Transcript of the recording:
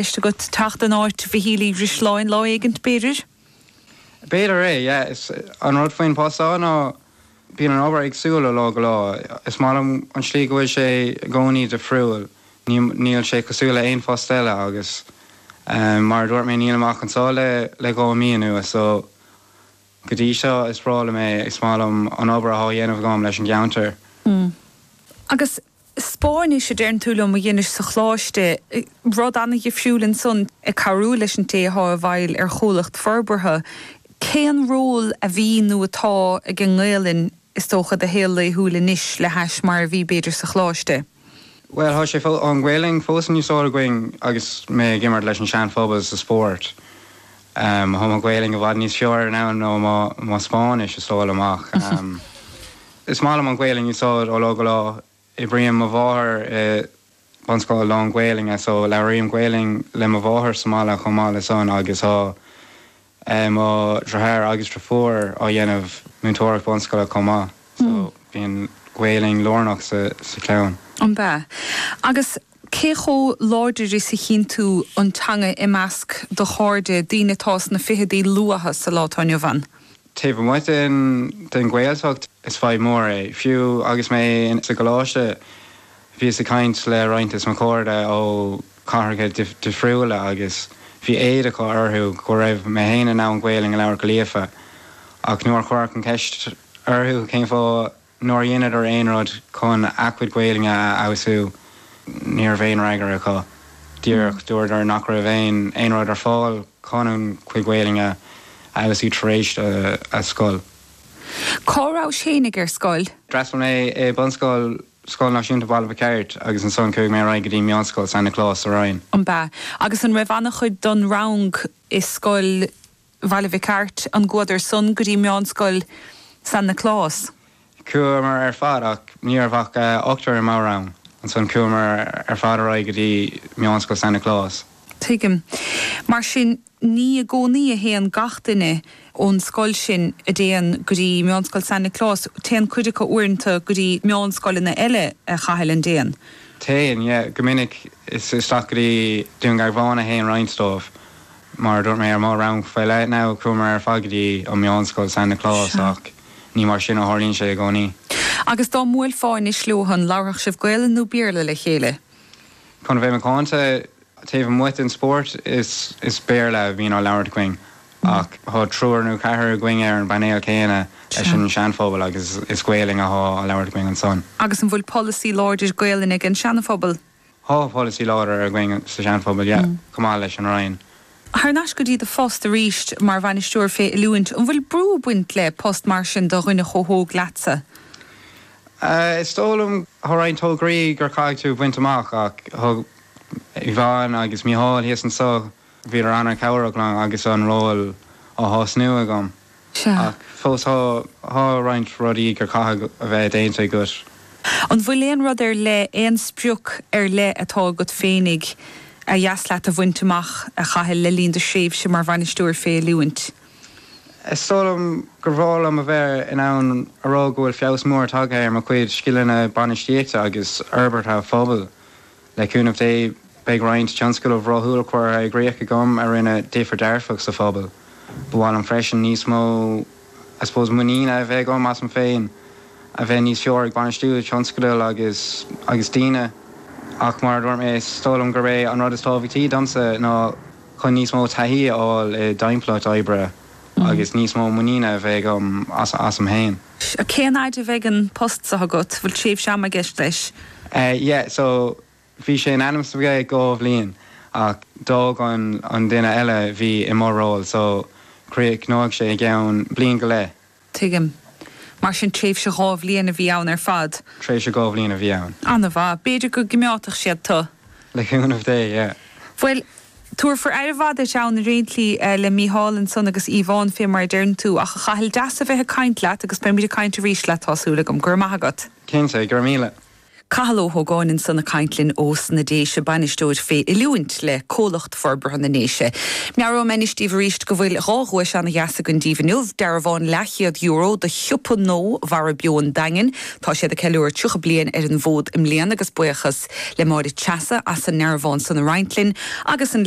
Ceist agat teacht in áit Mhichíl Uí Dhrisleáin lá éigint, b'fhéidir? B'fhéidir é, yeah. Is an rud faoin bpost seo ná bíonn an obair éagsúil ó lá go lá. Is maith liom an tslí go bhfuil sé i gcónaí difriúil. Níl sé cosúil le aon phost eile agus mar a dúirt mé nílim ach anseo le dhá mí anuas so go dtí seo is breá liom é. Is maith liom an obair atá á dhéanamh agam leis an gceantar. Agus Spáinnis, a deireann tú liom, a dheinis sa Choláiste. Rud ana-dhifriúil ansan, ag cabhrú leis an té athá i bhfeighil ar chomhlacht forbartha. Cén ról a bhí nó atá ag an nGaelainn, is dócha, i do shaol laethúil anois le hais mar a bhí, b'fhéidir, sa Choláiste? Bhuel, thá sé, an Ghaelainn, fós in úsáid againn agus mé ag imirt leis an Seanphobal sa spórt. Am, Tá mo Ghaelainn i bhfad níos fearr now ná mo Spáinnis, is dóigh liom, ach is maith liom an Ghaelainn a úsáid ó lá go lá. Oibríonn mo mháthair i bunscoil lán-Ghaelainne, só labhraím Gaelainn le mo mháthair sa mbaile chomh maith le san agus tá mo dhriotháir agus driofúr á dhéanamh múinteoireacht bunscoile chomh maith, só bíonn Gaelainn lárnach sa chlann. An b'ea? Agus cé chomh láidir is a chíonn tú an teanga i measc do chairde, daoine atá sna ficheadaí luatha sa lá atá inniu ann? Taobh amuigh den den Ghaeltacht, is fadhb mhór é. Fiú agus mé sa gcoláiste, bhíos ag caint le roinnt des mo chairde ó chathracha difriúla agus bhí éad acu orthu go raibh mé fhéin in ann Gaolainn a labhairt go líofa ach nuair a chuireadh an cheist orthu cén fáth, Nár dheineadar aon rud chun a gcuid Gaolainne a fheabhsú? Ní raibh aon fhreagra acu. Díreach dúradar nach raibh aon aon rud ar fáil chun a gcuid Gaolainne a fheabhsú tar éis an scoil. Cá rabhais fhéinig ar scoil? D'fhreastal mé i bunscoil Scoil Náisiúnta Bhaile Mhic Airt agus ansan chuaigh mé ar aghaidh go dtí Meánscoil San Nioclás sa Rinn. An b'ea? Agus an raibh ana chuid don rang i scoil. Bhaile Mhic Airt, an gcuadar san go dtí Meánscoil San Nioclás. Chuamar ar fad ach ní raibh ach ochtar i mo rang, ansan chuamar ar fad ar aghaidh go dtí Meánscoil San Nioclás. Tuigim. Mar sin ní i gcónaí a théann gach duine ón scoil sin, an dtéann, go dtí Meánscoil San Nioclás, téann cuid acu uaireanta go dtí meánscoileanna eile a Chathail, an dtéann. Téann, yeah, go minic isteach go dtí Dún Garbhán a théann roinnt dóibh. Mar a dúirt mé ar mo rang faoi leith now, chuamar ar fad go dtí an meánscoil San Nioclás ach ní mar sin a tharlaíonn sé i gcónaí. Agus dá mbuailfeá anois leosan, labharfadh sibh Gaolainn nó Béarla le chéile? Chun a bheith macánta, taobh amuigh den spórt, is Béarla a bhíonn á labhairt againn. Ach tá triúr nó ceathrar againn ar an bpainéal céanna leis an Seanphobal agus is Gaolainn atá á labhairt againn ansan. Agus an bhfuil polasaí láidir Gaolainne ag an Seanphobal? Tá polasaí láidir againn sa Sean Phobal, yeah, chomh maith leis an Rinn. Thar n-ais go dtí do phost arís mar Bhainisteoir fé Oiliúint, an bhfuil brú ag baint le post mar sin do dhuine chomh hóg leatsa? Eh, is dóigh liom, tá roinnt tograí gur caithfidh tú bhaint amach ach thug Yvonne agus Micheál thíos anso, bhíodar an-chabhrach liom agus an ról á thosnú agam. Sea. Ach fós tá roinnt rudaí gur caithfidh a bheith déanta agat. An bhfuil aon rud ar leith, aon sprioc ar leith atá agat féinig ba dheas leat a bhaint amach, a Chathail, le linn do thréimhse mar bhainisteoir fé oiliúint? Is dóigh liom gur bhreá liom a bheith in ann a rá go bhfuil feabhas mór tagtha ar mo chuid scileanna bainistíochta agus forbartha pobail. Le cúnamh Dé, beidh roinnt tionscadal rathúil curtha i gcríoch agam a rinne difir dearfach sa phobal. Ba mhaith liom freisin níos mó I suppose muiníne a bheith agam asam féin, a bheith níos fearr ag bainistiú tionscadal agus agus daoine. Ach mar a dúirt mé, is dóigh liom gurb é an rud is tábhachtaí domsa ná chun níos mó taithí a fháil i dtimpeallacht oibre agus níos mó muiníne a bheith agam asam féin. Cén fhaid a bheidh an post seo agat? Bhfuil tréimhse ama i gceist leis? Yeah so bhí sé in ainm is a bheith dhá bhliain ach d'fhág an duine eile a bhí i mo ról so críochnóidh sé i gceann bliain go leith. Tuigim. Mar sin tréimhse dhá bhliain a bhí ann ar fad? Tréimhse dhá bhliain a bhí ann. Ana-mhaith. B'fhéidir go gcoimeádfadh siad tu? Le cúnamh Dé yeah. Bhuel Tabharfar aire mhaith duit ann réiteoidh tú le Mícheál ansan agus Yvonne fé mar a deireann tú. Ach, a Chathail, deas a bheith ag caint leat agus beimid ag caint arís leat, tá súil agam. Go raibh maith agat. Cinnte, go raibh míle. Cathal Ó hÓgáin ansan ag caint linn ós na Déise, Bainisteoir fé Oiliúint le Comhlucht Forbartha na nDéise. Meabhraím anois díobh arís go bhfuil dhá dhuais ana-dheas againn daoibh inniu, dearbhán leathchéad euro do Shiopa Nó Mhara Beo an Daingin, Tá siad ag ceiliúradh 30 bliain ar an bhfód i mbliana agus buíochas le Máire Treasa as an ndearbhán san a roinnt linn agus an